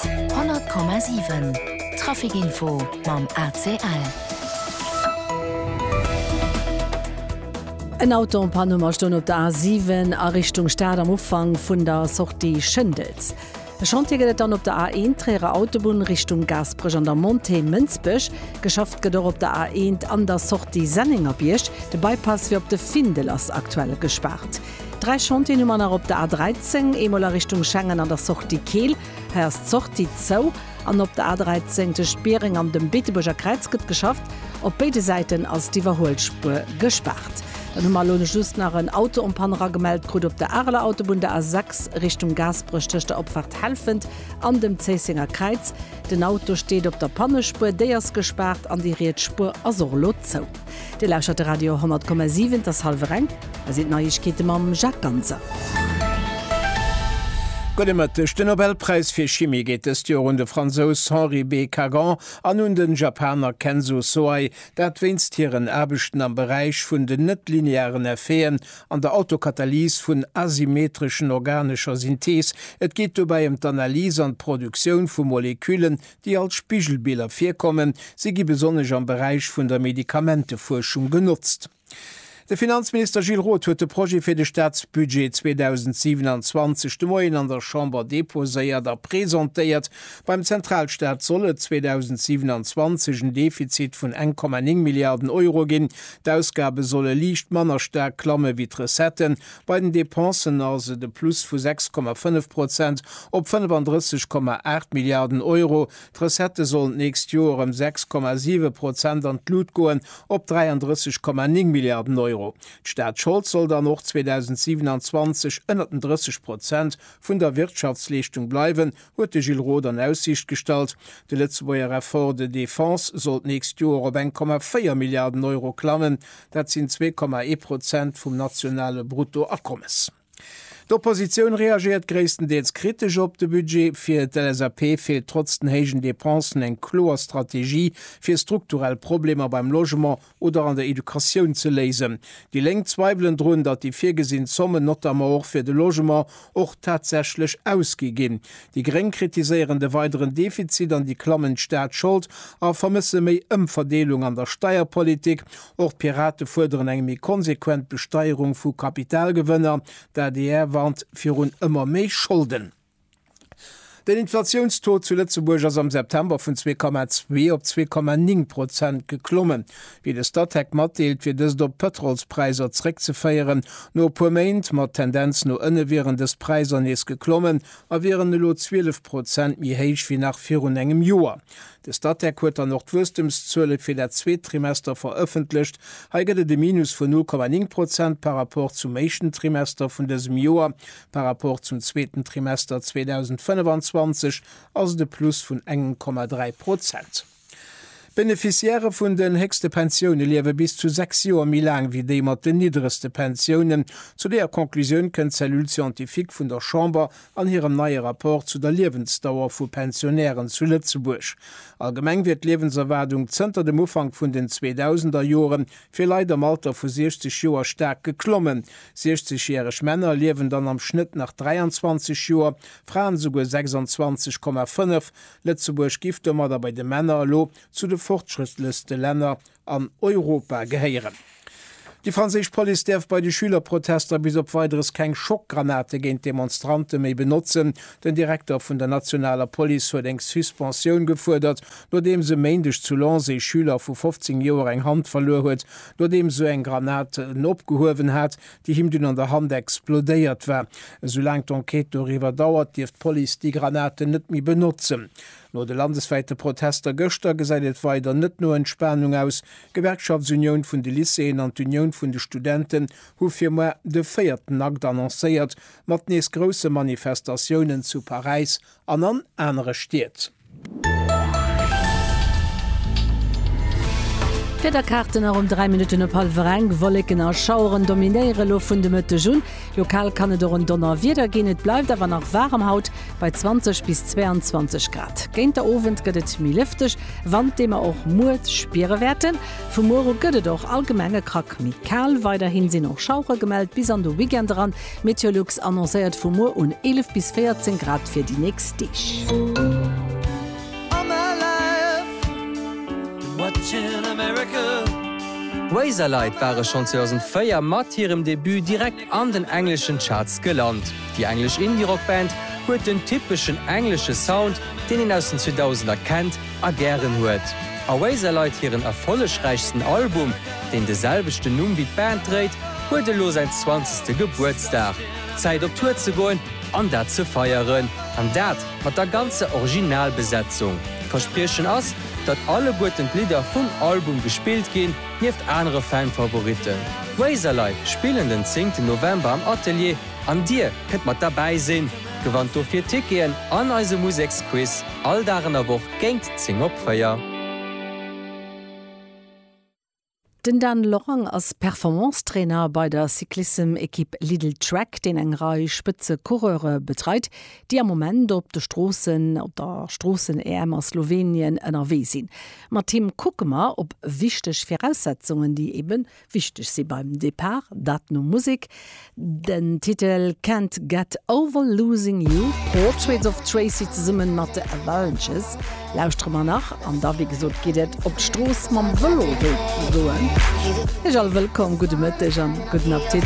100,7 Trafic Info mam ACL. En Auto en Panne um a stoung op der A7 a Richtung Stad am Ufank vun der Sortie Schëndels. E Chantier gëtt et dann op der A1 Tréierer Autobunn Richtung Gaasperech an der Montée Mënsbech. Geschafft gëtt och op der A1 an der Sortie Sennengerbierg. De Bypass fir op de Findel ass aktuell gespaart. Dräi Chantieren hu mer nach op der A13, eemol a Richtung Schengen an der Sortie Keel. Hei ass d'Sortie zou. An op der A13 tëscht Biereng an dem Beetebuerger Kräiz gëtt geschafft. Op béide Säiten ass d'Iwwerhuelspuer gespaart. Dann hu mer elo just nach en Auto en panne eragemellt krut op der Areler Autobunn, der A6 Richtung Gaasperech tëscht der Opfaart Helfent an dem Zéissenger Kräiz. Den Auto steet op der Pannespuer, déi ass gespaart an déi riets Spuer ass och elo zou. Dir lauschert de Radio 10,7, et ass hallwer eng, hei sinn d'Neiegkeete mam Jacques Ganser. Gudde Mëtteg, De Nobelpräis fir Chimie geet dëst Joer un de Fransous Henri B. Kagan an un den Japaner Kenzo Soei, dat wéinst hiren Aarbechten am Beräich vun den net-linearen Effeten an der Autokatalys vun asymmetreschen organescher Synthees. Et geet dobäi ëm d'Analys an d'Produktioun vu Moleküllen, déi als Spigelbiller virkommen, si gi besonnesch am Beräich vun der Medikamentefuerschung genotzt. De Finanzminister Gilles Roth huet de Projet fir de Staatsbudget 2027 de Moien an der Chamber deposéiert a presentéiert. Beim Zentralstaat soll et 2027 en Defizit vun 1,9 Milliarden Euro ginn. D'Ausgabe solle liicht manner staark klamme wéi d'Recetten, Bei den Dépensen ass et e Plus vu 6,5 Prozent op 35,8 Milliarden Euro. D'Recettë sollen d'nächst Joer ëm 6,7 Prozent an d'Lut goen, op 33,9 Milliarden Euro. D'Staatsschold soll dann och 2027 ënnert den 30 Prozent vun der Wirtschaftsleeschtung bleiwen, huet de Gilles Roth an Aussiicht gestallt. De Lëtzebuerger Effort de défense soll d'nächst Joer op eng Komma véier Milliarden Euro klammen, dat sinn zwee Komma ee Prozent vum nationale Bruttoakommes. D'Oppositioun reagéiert gréisstendeels kritesch op de Budget. Fir d'LSAP feelt trotz den héijen Depensen eng kloer Strategie, fir strukturell Problemer beim Logement oder an der Educatioun ze léisen. Déi Lénk zweiwelen drun, datt déi virgesinn Zommen, notamment och fir de Logement, och tatsächlech ausgi ginn. Déi Gréng kritiséieren de weideren Defizit an déi klammend Staatsschold a vermësse méi Ëmverdeelung an der Steierpolitik. Och d'Pirate fuerderen eng méi konsequent Besteierung vu Kapitalgewënner. D'adr warnt virun ëmmer méi Scholden. Den Inflatiounstaux zu Lëtzebuerg ass am September vun zwee Komma zwee op zwee Komma ning Prozent geklommen. Wéi de Statec matdeelt, wier dëst op d'Pëtrolspräisser zréckzeféieren. No e puer Méint mat Tendenz no ënne wieren dës Präisser nees geklommen a wieren elo 12 Prozent méi héich wéi nach virun engem Joer. De Statec huet dann och d'Wuesstemszuele fir dat zweet Trimester verëffentlecht. Hei gëtt et e Minus vun null Komma ning Prozent par rapport zum éischten Trimester vun dësem Joer, Par rapport zum zweeten Trimester 2025 ass et e Plus vun engem Komma dräi Prozent. D'Beneficiairë vun den héchste Pensioune liewe bis zu sechs Joer méi laang wéi déi mat den niddregste Pensiounen. Zu deeër Conclusioun kënnt d'Cellule scientifique vun der Chamber an hirem neie Rapport zu der Liewensdauer vu Pensionären zu Lëtzebuerg. Allgemeng wier d'Liewenserwaardung zënter dem Ufank vun den Zweedausender Joren fir Leit am Alter vu 60 Joer staark geklommen, 60 järeg Männer liewen dann am Schnëtt nach 23 Joer, Fraen esouguer 26,5. Lëtzebuerg giff domadder bei de Männer elo zu de fortschrëttlechste Länner an Europa gehéieren. Déi franséisch Police däerf bei de Schülerprotester bis op Weideres keng Schockgranate géint d'Demonstrante méi benotzen, Den Direkter vun der nationaler Police huet eng Suspensioun gefuerdert, nodeems e Méindeg zu Lens ee Schüler vu 15 Joer eng Hand verluer huet, nodeems sou eng Granat en opgehuewen hat, déi him dunn an der Hand explodéiert war. Esoulaang d'Enquête doriwwer dauert, dierf d'Police déi Granaten net méi benotzen. No de landeswäite Protester gëschter gesäit et weider net no Entspanung aus. D'Gewerkschaftsunioun vun de Lycéeën an d'Unioun vun de Studenten hu fir muer de véierten Akt annoncéiert, Mat nees grousse Manifestatiounen zu Paräis an an anere Stied. D'Wiederkaarten a ronn 3 Minutten op hallwer enk, Wolleken a Schaueren dominéiere lo vun de Mëtteg un. Lokal kann et och en Donnerwieder ginn. Et bleift awer nach waarem haut bei 20 bis 22 Grad. Géint der Owend gëtt et méi lëfteg, Wand dee mer och muer spiere wäerten. Vu muer u gëtt et och allgemeng e Krack méi kal. Weiderhi sinn och Schauere gemellt bis an de Weekend eran. Meteolux annoncéiert vu muer un 11 bis 14 Grad fir déi nächst Deeg. Razorlight ware schonn 2004 mat hirem Debut direkt an den engleschen Charts gelant. Déi englesch Indie-Rock-Band huet den typeschen englesche Sound, deen een aus den 2000er kennt, a gären huet. Oasis Lite, hiren erfollegräichsten Album, deen de selwechten Numm wéi d'Band dréit, huet elo säin zwanzegste Gebuertsdag. Zäit op Tour ze goen an dat ze feieren. An dat mat der ganzer Originalbesetzung. D'Verspriechen ass, datt alleguerten d'Lidder vum Album gespillt ginn, nieft anere Fan-Favoritten. D'Oasis Lite spillen den zéngten November am Atelier an dir kënnt mat derbäi sinn. Gewannt dofir Ticketen an eise Museksquiz. All Dag an der Woch géint 10 op 4. Den Dan Lorang ass Performance-Trainer bei der Cyclissem-Ekipp Lidl Trek, deen eng Rei Spëtze-Coureure betreit, déi am Moment op de Stroossen op der Stroossen-EM a Slowenien ënnerwee sinn. Mat him kucke mer op wichteg Viraussetzungen, déi eeben Wichteg si beim Depart Dat no Musek, den Titel Can't Get Over Losing You, Portraits of Tracy zesummen mat The Avalanches lauschtere mer nach an da wéi gesot geet et op d'Strooss mam Vëlo wéi soen ech. All wëllkomm, gudde Mëtteg an gudden Appetit.